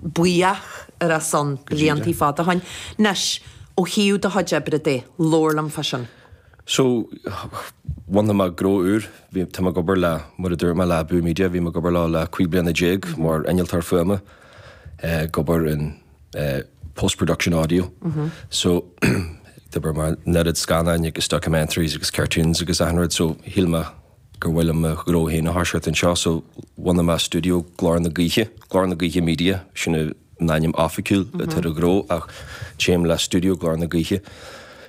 buíoch ar a son Go dtí blianta de. fada ó shin. Anois, ó thaobh do chuid oibre de, labhair liom fá sin. So, bhunaigh mé gnó úr. Bhí, tá mé ag obair le, mar a dúirt mé, le Abú Media, bhí mé ag obair leo le cúig bliana déag mar innealtóir fuaime, ag obair in eh post production audio. So, d'obair mé ar an oiread scannáin agus documentaries agus cartoons agus achan rud so shíl mé, gur mhaith liom mo ghnó féin a thoiseacht anseo so bhunaigh mé stiúideo, Glór na Gaoithe, Glór na Gaoithe Media, sin an ainm oifigiúil atá ar an ghnó ach téim le stiúideo Glór na Gaoithe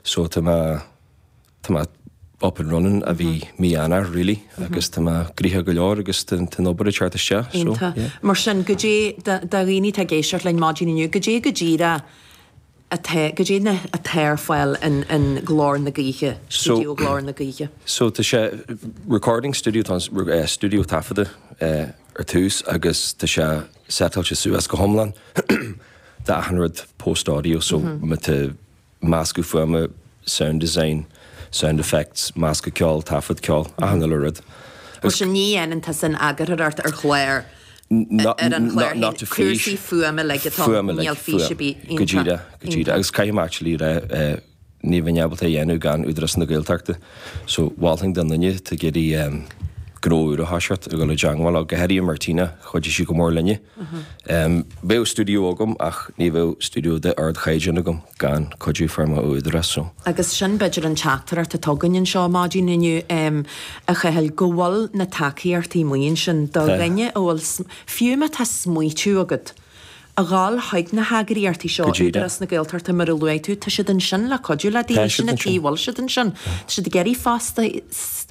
so tá mé, tá mé up and running ó bhí mí Eanáir really agus tá mé gnoitheach go leor agus tá an obair ag teacht isteach so yeah. Iontach. Mar sin, cad é do dhaoine atá ag éisteacht linn maidin inniu, cad é go díreach, atá cad é na. atá ar fáil in in Glór na Gaoithe, Stiúideo Glór na Gaoithe. So tá sé, recording studio, tá an stiúideo taifeadta ar dtús agus tá sé setáilte suas go hiomlán. Tá achan rud post audio, so má tá meascadh fuaime, sound design, sound effects, meascadh ceoil, taifead ceoil, achan uile rud. Mar sin ní dhéanann tusa an eagarthóireacht ar chláir ar an chlár féin, cúrsaí fuaime uilig atá ann, níl fís ar bith iontu. Go díreach, go díreach, agus caithfidh mé actually a rá ní bheinn ábalta é dhéanamh gan Údarás na Gaeltachta, so mholfainn do dhuine atá ag iarraidh gnó úr a thoiseacht a dhul i dteangmháil le, go háirithe Martina, chuidigh sí go mór linne. Bheadh studio agam ach ní bheadh studio de ardchaighdeán agam. gan cuidiú a fuair mé ón Údarás so. Agus sin, b'fhéidir, an teachtaireacht atá againn anseo maidin inniu, a Chathail, go bhfuil na tacaíochtaí amuigh ansin, do dhaoine a bhfuil, fiú má tá smaoitiú agat a dhul chuig na heagraíochtaí seo, Údarás na Gaeltachta mar a luaigh tú, tá siad ansin le cuidiú le daoine, sin an tuige a bhfuil siad ansin. Tá siad ag iarraidh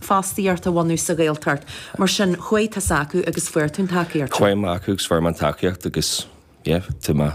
fostaíocht a bhunú sa Ghaeltacht, mar sin, chuaigh tusa acu agus fuair tú an tacaíocht sin. Chuaigh mé acu agus fuair mé an tacaíocht agus, yeah, tá mé.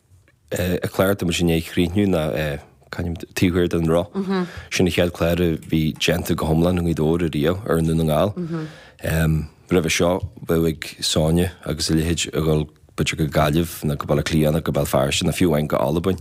Clár atá muid i ndiaidh a chríochnú ná Taobh Thiar den Roth. Sin an chéad chlár a bhí déanta go hiomlán i nGaoth Dobhair ariamh i nDún na nGall. Roimhe seo bheadh ag Sonia agus a leithéid a dhul b'fhéidir go Gaillimh nó go Baile Átha Cliath nó go Béal Feirste nó fiú anonn go hAlbain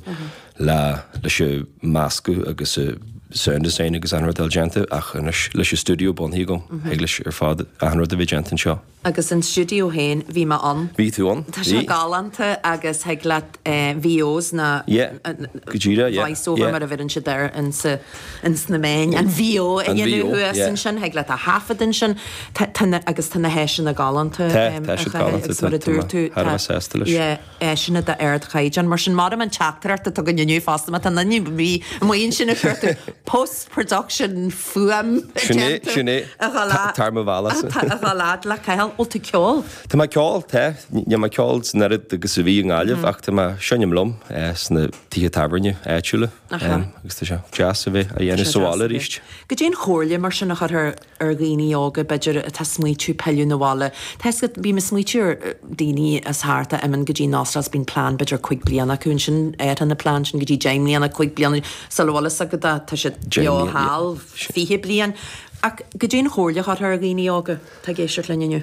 leis an mheascadh agus an sound design agus achan rud a fháil déanta ach anois leis an stiúideo bunaithe agam thig leis ar fad achan rud a bheith déanta anseo. Agus an stiúideo féin, bhí mé ann. Bhí tú ann, Tá sé bhí. galánta agus thig leat VOs nó Yeah, go díreach, yeah, voice over yeah. mar a bheireann siad air insa, ins na meáin, an VO a An dhéanamh VO, thuas yeah. ansin, thig leat a thaifead ansin. Tá, tá na, agus tá na háiseanna galánta Tá, tá siad galánta, is mar a tá mé dúirt tú, thar a tá, bheith sásta leis. yeah. áiseanna d'ardchaighdeán. Mar sin, mairim an teachtaireacht atá againn inniu fosta, má tá aon duine amuigh ansin ag cuartú post-production fuaim déanta. Sin é, sin é, tar mo bhealachsa. Tar a fhad le Cathal. Bhfuil tú ag ceol? Tá mé ag ceol, tá. Níl mé ag ceol an oiread agus a bhí i nGaillimh ach tá mé ag seinm liom sna tithe tábhairne áitiúla agus tá sé deas a bheith á dhéanamh sa bhaile arís. Cad é an chomhairle mar sin a chuirfeá ar dhaoine óga, b'fhéidir, atá ag smaoitiú pilleadh na bhaile. Tá fhios agat, bím ag smaoitiú ar daoine as thart a imeann go dtí na States, bíonn plean b'fhéidir cúig bliana acu ansin, athraíonn an plean sin go dtí deich mbliana, cúig bliana, sula bhfuil fhios agat é, tá siad beo thall fiche bliain. Ach cad é an chomhairle a chuirfeá ar dhaoine óga atá ag éisteacht linn inniu.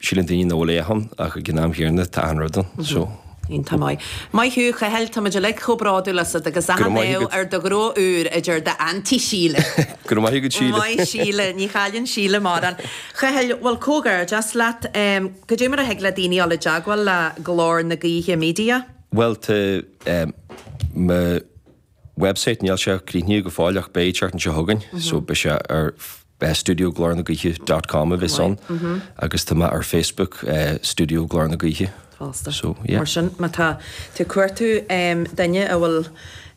Síleann daoine nach bhfuil a dhath ann ach ag an am chéanna tá achan rud ann. So. Bhí an t-ádh. Maith thú, a Chathail, táimid uilig chomh bródúil asat agus Go raibh achan maith ádh agat. ar do ghnó úr a deir d'Aunty Síle. Go raibh maith agat, Síle. Maith Síle, ní chailleann Síle mórán. Chathail, bhuel, comhghairdeas leat. Em, cad é mar a thig le daoine dul i dteagmháil le Glór na Gaoithe Media? Bhuel, tá, em, mo. website, níl sé críochnaithe go fóill ach beidh an tseachtain seo chugainn, so beidh sé ar Studio Glór na Gaoithe dot com a bheas ann agus tá mé ar Facebook, Studio Glór na Gaoithe. Fosta. So, yeah. Mar sin, má tá tú ag cuartú duine a bhfuil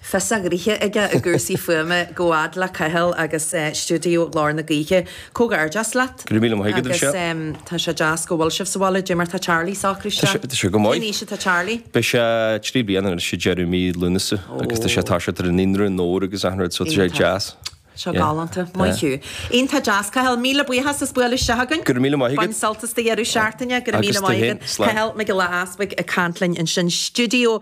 fios a ghraithe aige i gcúrsaí fuaime, gabh a fhad le Cathal agus Studio Glór na Gaoithe. Comhghairdeas leat. Go raibh míle maith agat as seo. Agus tá sé deas go bhfuil sibh sa bhaile Cad é mar tá Charlie ag socrú isteach. Tá sé go maith. Cén aois atá Charlie? Beidh sé trí bliana anois i ndeireadh mí Lúnasa agus tá sé tá sé ar an naíonra agus achan rud so tá sé deas. Seo galánta. Maith thú. Iontach deas Cathal. Míle buíochas as bualadh isteach againn. Go raibh míle maith agat. Bain sult as do dheireadh seachtaine. Go raibh míle maith agat. Agus tú fhéin. Slán. Cathal Mac Giolla Easpaig ag caint linn ansin stiúideo.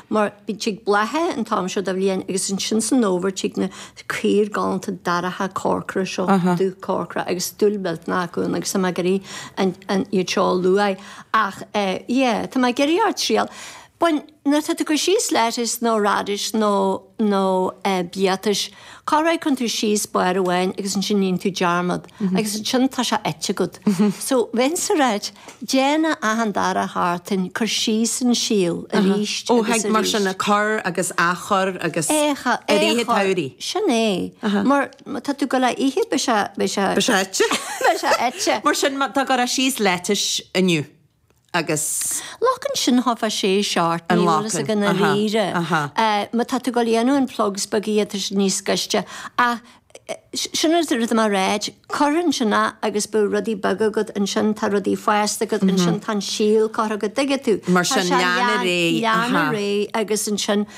mar bhí tig bláth air an t-am seo de bhliain agus ansin san fhómhar tig na caora galánta dorcha corcra seo, dubh corcra agus dúil mhillteanach acu ann agus tá mé ag iarraidh an, an, iad seo a lua ach eh yeah tá mé ag iarraidh ort triail a bhaint, nuair atá tú ag cur síos lettuce nó radish nó, nó eh biatais, Cairéid, cuireann tú síos barr amháin agus ansin níonn tú dearmad agus ansin tá sé ite agat. So bheinnse ag ráit, déan é achan dara seachtain, cur síos an síol arís agus arís. Ó thig mar sin a cur agus a chur agus i rith an tsamhraidh. Sin é. Mar tá tú ag dul á ithe beidh sé, beidh sé. Beidh sé ite. Beidh sé ite. Mar sin tá tú ag cur síos leitís inniu. agus. Glacann sin thart fá sé seacht, An ní bhfuil fhios nglacann, agam i aha, ndáiríre. aha. Eh, má tá tú ag dul a dhéanamh na plugs beaga, tá sin níos gaiste. Ach, eh, sin an rud atá mé a ráit, cuir ansin é agus beidh rudaí beaga agat ansin, tá rudaí fásta agat ansin, tá an síol curtha agat, an dtuigeann tú? Mar Tá sin sé lean ar lean- aghaidh, lean aha. ar aghaidh agus ansin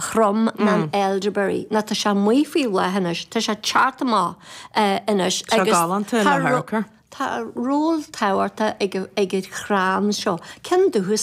throm nó an elderberry. Ná tá sé amuigh faoi bhláth anois, tá sé ag teacht amach anois Tá agus galánta ina thar- tá ról tábhachtach ag an chrann seo. Cén dúchas?